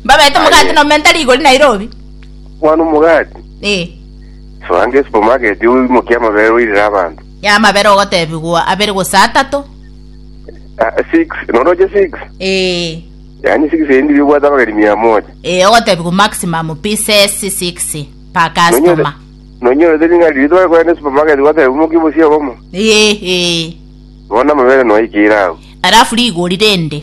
Mbabete omogati Aye. nomenta rigori Nairobi. Mwana omogati, Eh. soange esupamaketi oimokie amabere oirere abanto. Ya amabere ogotebigwa abere gose atato. Ah, six, noroche six? Eh. Yaani six endi bibwate abageni mia moja. Eh, ogotebigwa maximum pieces 6 per customer. Nonyorete ring'ari ritu bari kwenda esupamaketi goteba oimokie bosie obomo. Eh, eh. Bono amabere noikire agwo. Alafu rigori rende.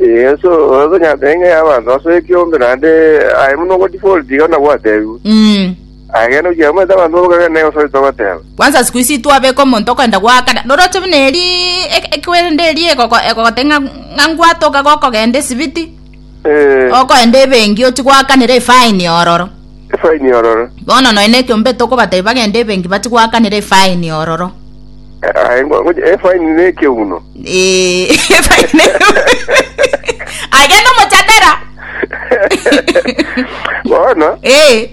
Yeso tonyarete ng'a y'abanto ase ekiombe, naende aye buna ogotiga oreti iga buna gwatebiwe. Mm. Agende gochia amoete abanto bobe kagere na egoso rito goteba. Kwanza siku ici twabeka omonto okoenda gwakana noroche buna eri ek- ekwende eri egoko- egogote ng'a ng'a ngwatoka gokogenda esibiti Eh, okoenda ebenki ochi gwakanera efaini ororo efaini ororo. Bono nonya nekiombe tokobatebi bagende ebenki batigoakanera efaini ororo. Aye ngo- ngo- efaini ne ekeuno. Eh, efaini agende omochatera Bono, Eh,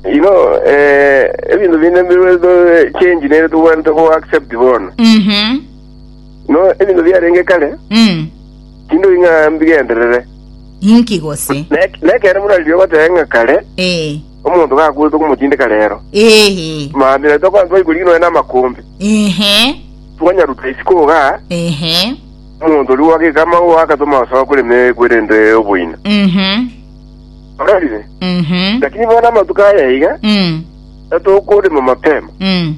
you know, eh, ebinto binde bire to- change nere tobwanete go accept bono. mhm, No, ebinto biarenge kare, mm, tindori ng'a mbigenderere. Inki gose? Na ek- na ekero buna riria ogoteba ng'a kare, Eh, omonto gakwete okomotindeka rero. ehe, Mambia naitwe kwanza twaikori noe namakombe. ehe, Twanyaruta isiko iga, ehe, omonto oria gwageka amagwa agatoma osoa korema ekwerende oboina. mhm, Orarire? mhm, Lakini bono amatuko aya iga, mm, natokorema mapema. mm,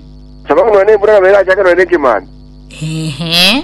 Sababu noe nembura nabo erachake noe nekemani. ehe,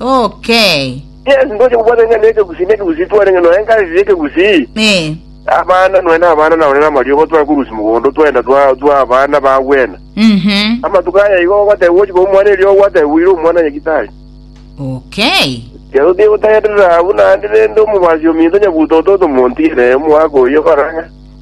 Okay. Yes, ntoche kobwata ng'a nekegusii nekegusii tware ng'a noe nkareti nekegusii Eh. abana noe nabana nabo nere amariogo tware korusi mogondo twenda twa twa abana bagwena Mhm. amatuko aya igo ogoteba gochika omwana erio ogwateba bwire omwana nyagitari Okay. kero tie gotagerera abwo naende rende omobasi ominto nyabuto ototo montiere omwaka oyo korang'a